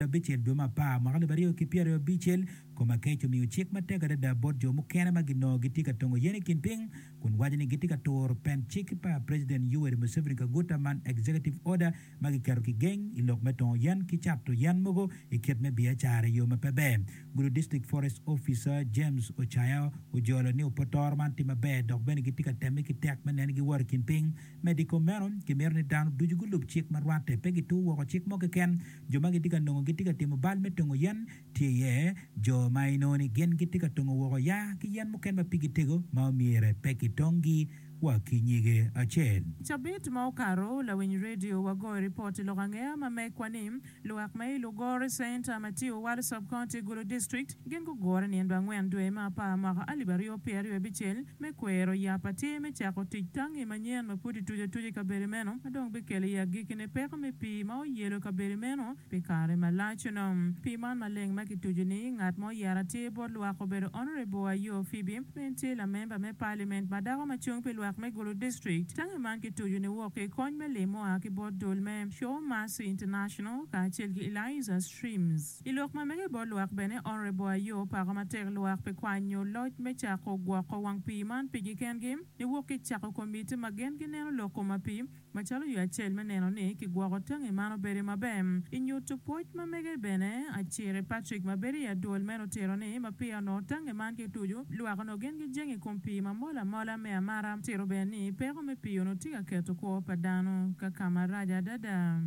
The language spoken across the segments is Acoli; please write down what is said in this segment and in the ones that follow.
ngeto abicel dwe me apar mwaka alip aryo ki pyeraryo abicel, Komakech omiyo cik matek adada bot jo mukene ma ginongo gitye ka tongo yen i kin piny kun waco ni gitye ka turo pen cik pa President Yoweri Museveni Kaguta man Executive Order ma giketo ki geng i lok me tongo yen ki cato yen mogo i kit me biacara i yo ma pe ber. Gudo District Forest Officer James Ochaya ojolo ni opotoro man tye maber dok bene gitye ka temme ki tek me neno ni giworo i kin piny. Medo i kom meno, kimito ni dano ducu gulub cik ma rwatte pe gitur woko cik mo keken. Jo ma gitye ka nongo gitye ka timo bal me tongo yen tye iye jo ma inongo ni gin gitye ka tongo woko ya ki yen mukene ma pigi tego ma omyere pe kitonggi wa ki nyige acel. I cabit ma okato, lawiny redio wagoyo ripot i lok angeya ma megwa ni, Luwak ma i Lugore Center, Matiu, Warsop County, Gulu District, Gin gugure nino angwen dwe me apar mwaka alip aryo pyera aryo abicel me kwero yap atir me cako tic tangi manyen ma pud kituco atuca i kabedo meno ma dong bikelo i agikine peko me pii ma oyelo kabedo meno pi kare malac. Onongo pii man maleng ma kituco ni ngat ma oyero atir bot lwak obedo Honourable Ayoo Phoebe ma en tye lamemba me Parliament ma dako ma cung pi lwak me Gulu District. Tangi man kituco ni wok ki i kony me lim mua ki bot dul me Show Mercy International kacel ki Eliza Streams. I lok ma mege bot lwak bene, Honourable Ayoo opako matek lwak pi kwanyo loc me cako gwoko wang pii man pigi kengi niwok ki cako komiti ma gin gineno lok koma pi macalo yo acel me neno ni kigwoko tangi man obedi maber. I nyutu pwoc ma mege bene, Aciri Patrick ma bedo i adwol meno otito ni ma peya onongo tangi man kitucu, lwak onongo gin gijenge i kom pii ma mol amola me amara. Tito bene ni peko me pii onongo tye ka keto kwo pa dano ka kama rac adada.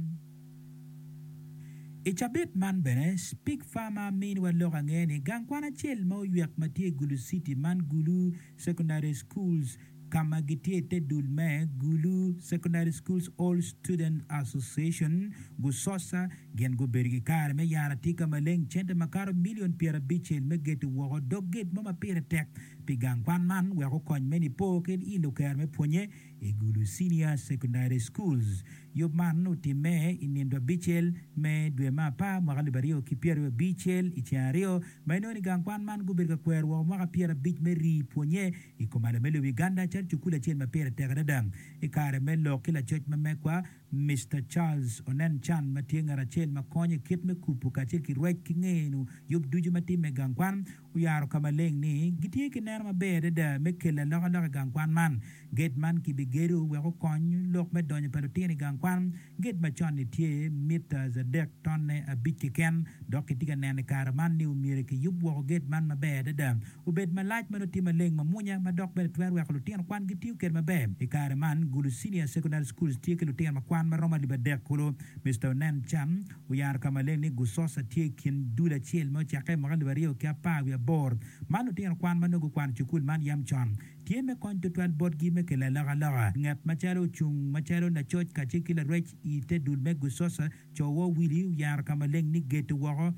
I cabit man bene, Speke Farmer miniwa lok ange ni gang kwan acel ma oywek ma tye i Gulu City man Gulu Secondary Schools ka ma gitye i te dul me Gulu Secondary Schools All Students Association, Gusosa, gin gubedo ki kare me yaro atika maleng cente ma kato milion pyerabicel me geto woko dog gate mo ma pire tek pi gang kwan man wek okony me Nipo ki i Lukere me pwonye. I Gulu Senior Secondary Schools, yub man otimme i nino abicel me dwe me apar mwaka alip aryo ki pyeraryo abicel i ceng aryo ma inongo ni gang kwan man gubedo ka kwero woko mwaka pyerabic me rii pwonye i kom alame lobo Uganda calo cukul acel ma pire tek adada i kare me lok ki lacoc ma megwa Mister Charles Onen Chan ma tye ngat acel ma konyo i kit me kubu kacel ki rwec ki ngeno yub ducu ma timme i gang kwan. Oyaro ka maleng ni gitye ki neno maber adada me kelo alokaloka i gang kwan man. Gate man kibigedo wek okony lok me donyo pa lutino i gang kwan. Gate ma con-ni tye mita adek tonne abic keken, dok kitye ka neno i kare man ni omyero kiyub woko gate man maber adada, obed malac ma nongo tye maleng mamwonya ma dok bene twero weko lutino kwan gitiyo kwede maber. I kare man, Gulu Senior Secondary Schools tye ki lutino ma kwan ma romo alip adek kulu. Mister Onen Chan, Oyaro ka maleng ni Gusosa tye i kin dul acel me ocakke mwaka alip aryo ki apar wiye abor ma lutino kwan ma nongo gukwano i cukul man yam con, tye me kony tutwal botgi me kelo alokaloka. Ngat macalo ocung macalo lacoc kacel ki larwec i te dul me Gusosa, Co Woo Willie oyaro ka maleng ni geto woko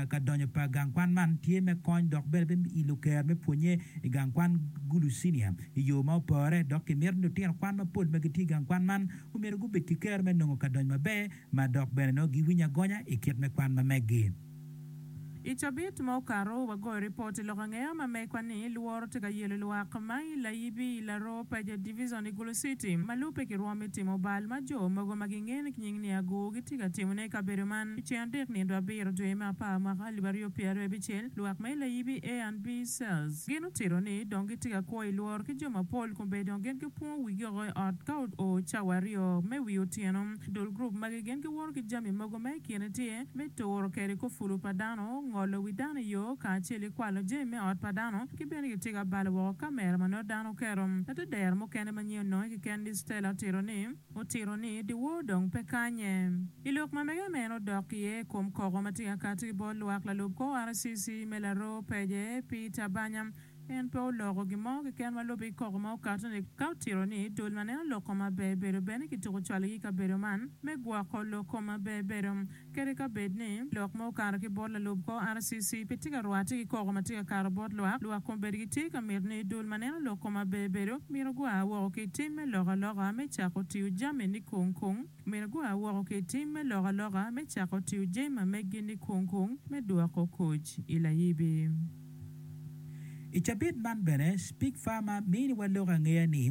ka donyo pa gang kwan man tye me kony dok bene me ilo kero me pwonye i gang kwan Gulu Senior i yo ma opore dok kimito ni lutino kwan mapol ma gitye i gang kwan man omyero gubed ki kero me nongo ka donyo maber ma dok bene nongo giwinyo agonya i kit me kwan ma meggi. I cabit ma okato, wagoyo ripot i lok angeya ma megwa ni lworo tye ka yelo lwak ma i Layibi, i Laroo, Paja Division, i Gulu City. Ma lubbe ki rwom me timo bal ma jo mogo ma gingen ki nying ni Aguu gitye ka timone i kabedo man. I ceng adek nino abiro dwe me apar mwaka alip aryo pyera aryo abicel, lwak ma i Layibi A and B Cells gin otito ni dong gitye ka kwo i lworo ki jo mapol kun bene dong gin gipwongo wigi oko i ot ka oo cawa aryo me wi otyeno. Dul gurup magi gin giwoto ki jami mogo ma i kine tye me turo kede kor pulu pa dano, ngolo wi dano i yo, kacel ki kwalo jami me ot pa dano, ki bene ki tigo abalo woko kamera ma nongo dano oketo. Atedero mukene ma nyen ononge kiken ni Stella otito ni, Otito ni dyewor dong pe kanye. I lok ma mege meno odok iye i kom koko ma tye ka kati bot lwak lalub kor RCC me laroo pece, Peter Banyam, En pe oloko gin mo keken ma lubbe ki koko ma okato ni, ka otito ni dul ma neno lok kom maber bedo bene kituko cwalogi i kabedo man me gwoko lok kom maber bedo. Kadi ka bed ni lok ma okato ki bot lalub kor RCC pe tye ka rwatte ki koko ma tye ka kato bot lwak, lwak kombeddi gitye ka mito ni dul ma neno lok kom maber bedo myero gua woko ki i tim me lok aloka me cako tiyo jami ni kung kung. Myero gua woko ki i tim me loko aloka me cako tiyo jami ma meggi ni kung kung me dwoko koc i layibi. I cabit man bene, Speak Pharma miniwa lok angeya ni,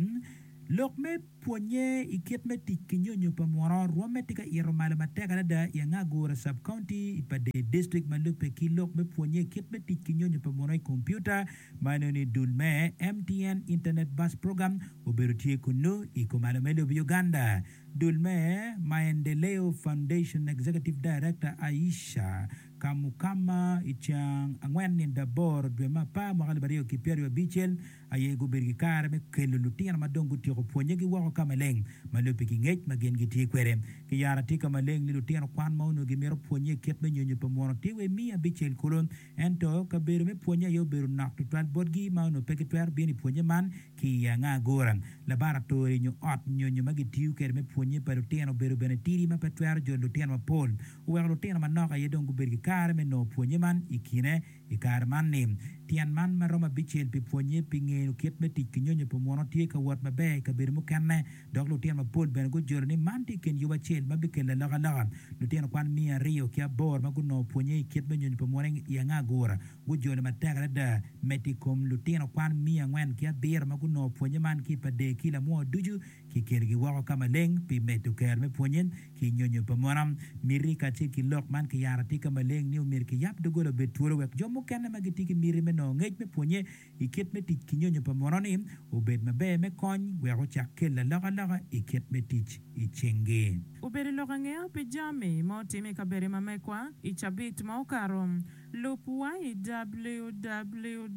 Lok me pwonnye i kit me tic ki nyonyo pa muno rwomme tye ka ito malo matek adada i anga Agura Sub-County i Padee District ma lubbe ki lok me pwonnye i kit me tic ki nyonyo pa muno i kompiuta ma inongo ni dul me MTN Internet Bus Program obedo tye kunnu i kumalo me lobo Uganda. Dul me Maendeleo Foundation Executive Director Aisha Kamukama i ceng angwen nyo aboro dwe me apar mwaka alip aryo ki pyeraryo abicel aye gubedo ki kare me kelo lutino ma dong gutyeko pwonye gi woko ka maleng ma lubbe ki ngec ma gin gitye kwede ki yara atir ka maleng ni lutino kwan ma onongo gimito pwonye kit me nyonyo pa munu atir wa imi abicel kulu ento kabedo me pwonye aye obedo nok tutwal botgi ma onongo pe gitwero bino i pwonye man Ki i anga agura, labaratori nyo ot nyonyo ma gitiyo kwede me pwonnye pa lutino obedo bene tidi ma pe twero jolo lutino mapol. Oweko lutino manok aye dong gubedo ki kare me nongo pwonnye man i kine. I kare man ni, tyen man ma romo abicel pi pwonnye pi ngeno kit me tic ki nyonyo pa muno tye ka wot maber i kabedo mukene. dok lutino mapol bene gujolo ni man tye i kin yub acel ma bikelo alokaloka. Lutino kwan miya aryo ki aboro ma gunongo pwonnye i kit me nyonyo pa Morning i anga agura gujolo matek adada medo i kom lutino kwan miya angwen ki abiro ma gunongo pwonnye man ki i pader ki lamwoo ducu ki kelogi woko ka maleng pi medo kero me pwonnye ki nyonyo pa mon. Miti kacel ki lok man kiyaro atika maleng ni omyero kiyab doggola obed twolo wek jo mukene ma gitye ki miti me nongo ngec me pwonnye i kit me tic ki nyonyo pa muno-ni obed maber me kony wek ocak kelo alokaloka i kit me tic i cingi. Obedo lok ange pi jami ma otim i kabedo i Mamekwa i cabit ma okato? Lub wa i www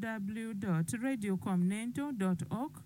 dot radio com nento dot org.